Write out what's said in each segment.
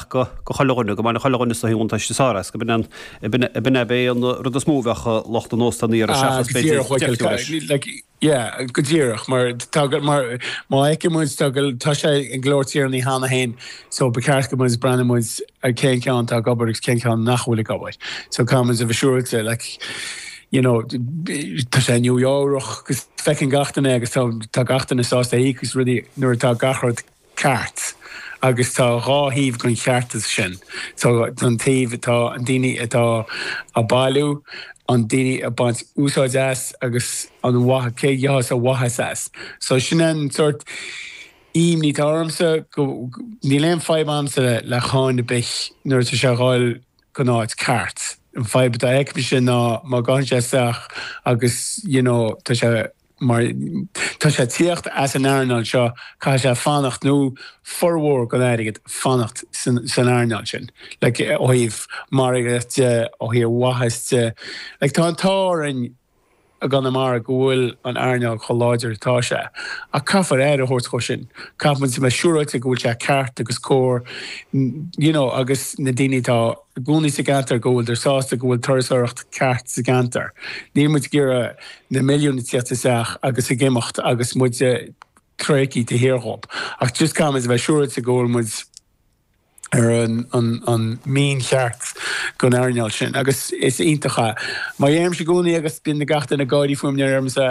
go chuile dhuine, go mbainfeadh chuile dhuine sórt buntáiste as, go b'in é b'é an rud is mó a bheadh lucht an óstáin ag iarraidh seachas, b'fhéidir, deifniú leis. Yeah, go díreach, mar má fheiceann muid, tá sé i gCill Airne cheana féin, so ba cheart go mbeidh, breathnú muid ar cén ceann atá ag obair agus cén ceann nach bhfuil ag obair. So caithfidh muid a bheith siúráilte, like, you know, tá sé i Nua-Eabhrac, feiceann gach duine é agus tá gach duine sásta a íoc as rudaí nuair atá gach rud, ceart. Agus tá dhá thaobh den cheartas sin. Tá an taobh atá na daoine atá á bailiú, na daoine ag baint úsáid as agus an mhaith, cé a gheobhas a mhaitheas as. So sin an sórt ímní atá ormsa go, níl aon fadhb agamsa le cáin ar bith nuair atá sé ag dul go dtí an áit ceart. An fadhb a fheicimse ná má ghabhann sé isteach agus you know tá sé, mar tá sé ag tíocht as an earnáil seo, caithfidh sé fanacht, nó formhór den airgead, fanacht san earnáil sin, like ó thaobh margaíocht de, ó thaobh maitheas de. Like tá an t-ádh orainn i gConamara go bhfuil an earnáil chomh láidir atá sé, ach caithfear aire a thabhairt dhó sin, caithfimid a bheith siúráilte go bhfuil sé ceart agus cóir, you know, agus na daoine atá. I gcónaí sa gceantar go bhfuiltear sásta go bhfuil turasóireacht ceart sa gceantar, níl muid ag iarraidh na milliúin a theacht isteach agus ag imeacht agus muid ag déanamh tada de shíor dhóibh. Ach just caithfidh muid a bheith siúráilte go bhfuil muid ar an mian cheart don earnáil sin. Agus is iontach é. Mar a deirimse i gcónaí agus bíonn gach duine ag gáirí fúm nuair a deirimse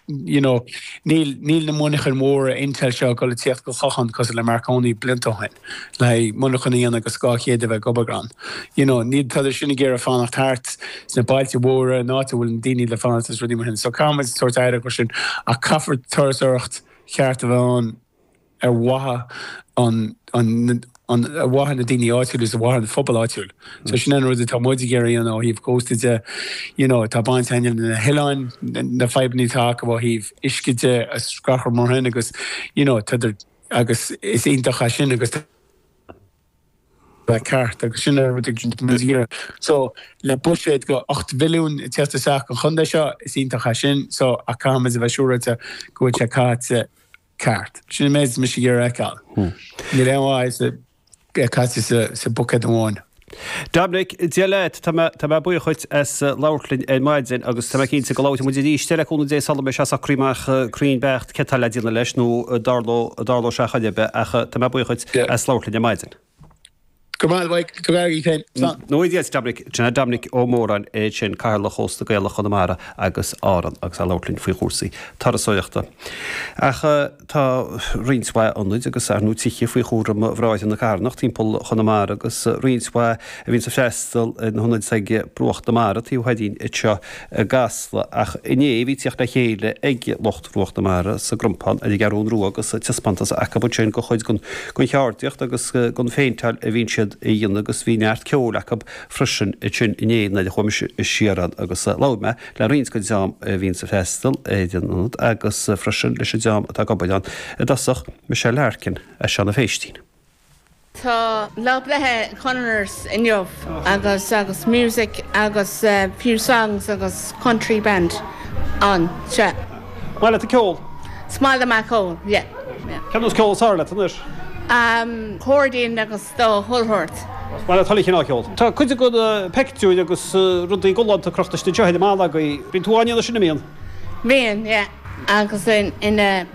You know, níl, níl na monarchain mhóra Intel seo ag dul ag tíocht go Clochán cosúil le Marconi blianta ó shin, le haghaidh monarchan a dhéanamh agus dhá chéad a bheith ag obair ann. You know, níl, tádar sin ag iarraidh fanacht thart sna bailte mhóra, in áit a bhfuil na daoine le fanacht agus rudaí mar sin. So caithfidh muid tabhairt aire dhó sin, ach caithfear turasóireacht cheart a bheith ann. ar mhaithe an an, ar mhaithe na daoine áitiúil is ar mhaithe an phobail áitiúil. So sin an rud atá muid ag iarraidh a dhéanamh ó thaobh cósta de. You know tá baint againn le na hoileáin, na fadhbanna atá acu ó thaobh uisce de agus gach rud mar sin agus you know tádar agus is iontach é sin agus tá bheith ceart agus sin an rud atá muid ag iarraidh. So le buiséad go ocht mhilliún ag teacht isteach an chontae seo, is iontach é sin. So ach caithfimid a bheith siúráilte go bhfuil sé caite ceart. Sin an méid atá mise ag iarraidh a fheiceáil. Níl aon mhaith é caite sa buicéad amháin. Doimnic, Dia leat. Tá mé buíoch dhuit as labhairt linn ar maidin agus tá mé cinnte go labhróidh muid arís, le cúnamh Dé, sula mbeidh sé socraithe amach cruinn beacht céard atá le déanamh leis nó an dtarlóidh sé ar chor ar bith ach tá mé buíoch dhuit as labhairt linn ar maidin. Go maith Mhaidhc, go bhfearr í féin. Slán. Nó i dteannta Dominic, John Dominic Ó Móráin é sin, Cathaoirleach Chósta Gaelach Chonamara agus Árann agus é ag labhairt linn faoi chúrsaí turasóireachta. Ach tá roinnt mhaith ionaid agus tithe faoi chúram Bhráithre na Carthanach timpeall Chonamara agus roinnt mhaith a bhíonns ag freastal ar an ionad atá ag Bruach na Mara, taobh thoir dínn anseo i gCasla. Ach inné bhí teacht le chéile ag lucht. Bruach na Mara, sa gCrompán, ar an gCeathrún Rua agus taispeántas acu ansin de chuid den cheardaíocht agus den phéinteáil a bhíonn siad a dhéanamh agus bhí neart ceoil acu freisin ansin inné nuair a chuaigh mise siar ann agus labhair mé le roinnt den dream a bhíonns ag freastal ar an ionad agus freisin leis an dream atá ag obair ann i dtosach, Michelle Larkin as Seanadh Phéistín. Tá lá breithe Connor's inniu agus agus music agus few songs agus country band anseo. Is maith leat an ceol? Is maith liom an ceol, yeah. Céard an ceol is fearr leat anois? An cairdín agus chuile shórt. Is maith leat chuile chineál ceol? Tá cuid de na peictiúir agus rudaí galánta crochta istigh anseo agaibh. Bíonn tú á ndéanamh sin, an mbíonn? Bíonn, yeah, agus in a.